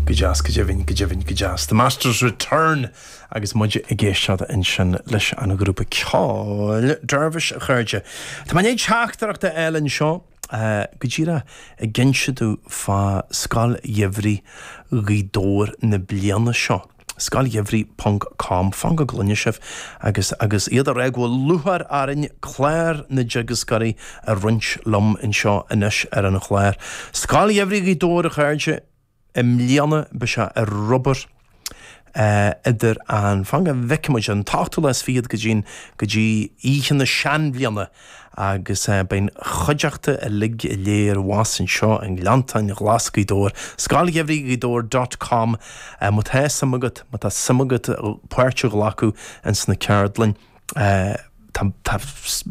Go deas, go deimhin, go deimhin, go deas. The Masters Return agus muid ag éisteacht ansin leis an ghrúpa ceoil Dervish, a chairde. Tá mé i ndiaidh teachtaireacht a fháil anseo, go díreach ag inse dom fá Scoil Gheimhridh Ghaoth Dobhair na bliana seo. Scoil Gheimhridh ponc com, Fan go gcluine sibh agus agus iad ag rá go bhfuil lúcháir orainn clár na dteagascóirí a roinnt liom anseo anois ar an chlár. Scoil Gheimhridh Ghaoth Dobhair a chairde, i mbliana beidh sé ar obair idir an, fan go bhfeicfidh muid, an t-ochtú lá is fichead go dtí go dtí oíche na seanbhliana, agus beidh an chuideachta uilig go léir abhus anseo i nGleanntáin Ghlas Ghaoth Dobhair, Scoil Gheimhridh Ghaoth Dobhair dot com má tá suim agat, má tá suim agat páirt a ghlacadh ins na ceardlainn. Tá tá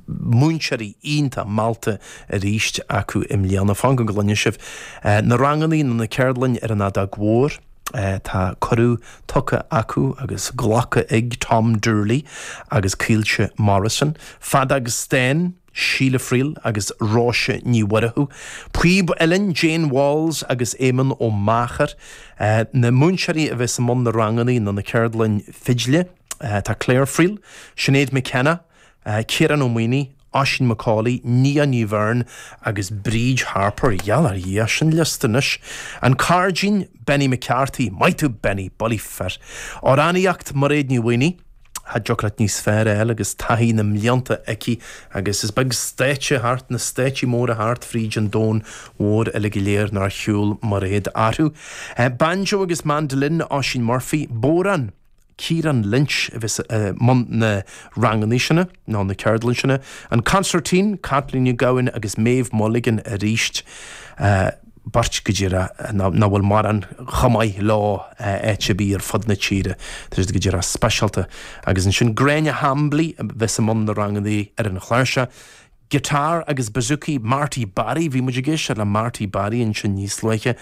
múinteoirí iontach meallta arís acu i mbliana. Fan go gcluine sibh na ranganna nó na ceardlainn ar an fheadóg mhór. Tá cuireadh tugtha acu agus glacadh ag Tom Doorley agus Caoilte Morrison, Feadóg stáin, Síle Friel agus Róise Ní Mhurchú, Píob uilleann, Jane Walls agus Éamonn Ó Meachair. Na múinteoirí a bheas i mbun na ranganna nó na ceardlainn fidle, tá Claire Friel, Sinéad McKenna, Ciarán Ó Maonaigh, Oisín McAuley, Nia Ní Bheirn agus Bríd Harpur, gheall ar Dhia, sin liosta anois! An Cairdín, Benny McCarthy, maith tú Benny, bullaí fir! Amhránaíocht, Mairéad Ní Mhaonaigh, cha dtiocfadh leat níos fearr a fháil agus taithí na mblianta aici agus is beag stáitse thart na stáitsí móra thart fríd an domhan mhór uilig go léir nár shiúl Mairéad orthu. Banjo agus Mandolin, Oisín Murphy, bodhrán, Kieran Lynch a bheas i mbun na ranganna sin, nó na ceardlann sin, an Concertina, Caitlín Nic Gabhann agus Méabh Mulligan arís, beirt go díreach nach bhfuil mórán chomh maith leo áit ar bith ar fud na tíre, tá siad go díreach speisialta. Agus ansin Gráinne Hambly a bheas i mbun na ranganna ar an chláirseach. Guitar agus bouzouki, Marty Barry, bhí muid ag éisteacht le Marty Barry ansin níos luaithe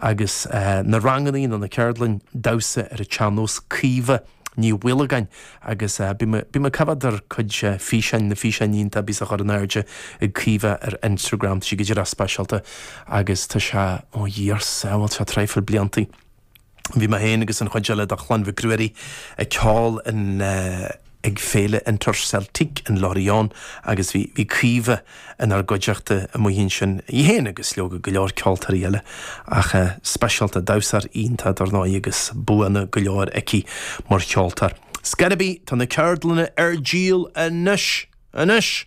agus na rangannaí nó na ceardlainn damhsa ar an tsean-nós, Caoimhe Ní Mhaolagáin agus bhí mé bhí mé ag coimhéad ar cuid físeáin, na físeáin iontacha a bhíos á chur in airde ag Caoimhe ar Instagram, tá sí go díreach speisialta agus tá sé, ó Dhia ár sábháil, tá sé traidhfil blianta. Bhí mé féin agus an chuid eile de Chlann Mhic Ruairí ag ceol ag Féile Interceltique in Lorient agus bhí bhí Caoimhe inár gcuideachta amuigh ansin, í féin agus leoga go leor ceoltóirí eile ach speisialta, damhsóir iontach dar ndóigh agus buanna go leor aici mar cheoltóir. Scarby, tá na ceardlanna ar díol anois!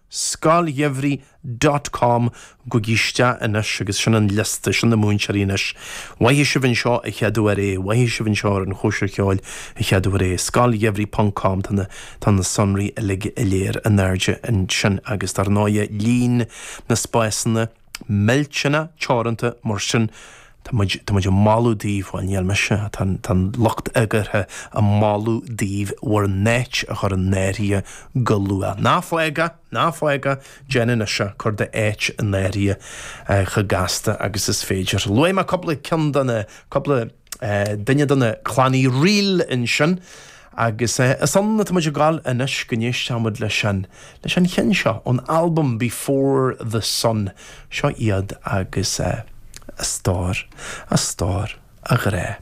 Scoil Gheimhridh dot com Gabhaigí isteach anois agus sin an liosta, sin na múinteoirí anois. Más mhaith libh anseo a cheadú ar é, más mhaith libh anseo ar an chóisir cheoil a cheadú ar é. Scoil Gheimhridh ponc com tá na, tá na sonraí uilig go léir in airde ansin agus dar ndóigh líon na spásanna, millteanna teoranta mar sin tá muid, tá muid ag moladh daoibh, bhuel níl mise, tá an, tá an lucht eagraithe ag moladh daoibh bhur n-áit a chur in áirithe go luath. Ná fág é, ná fág é, déan anois é, cuir d'áit in áirithe chomh gasta agus is féidir. Luaigh mé cúpla ceann de na, cúpla. duine de na Clann Uí Fhríl ansin agus is ionsarthu atá muid ag dul anois go n-éistfeadh muid leis an, leis an cheann seo ón albam Before The Sun. Seo iad agus a stór, a stór, a ghrá.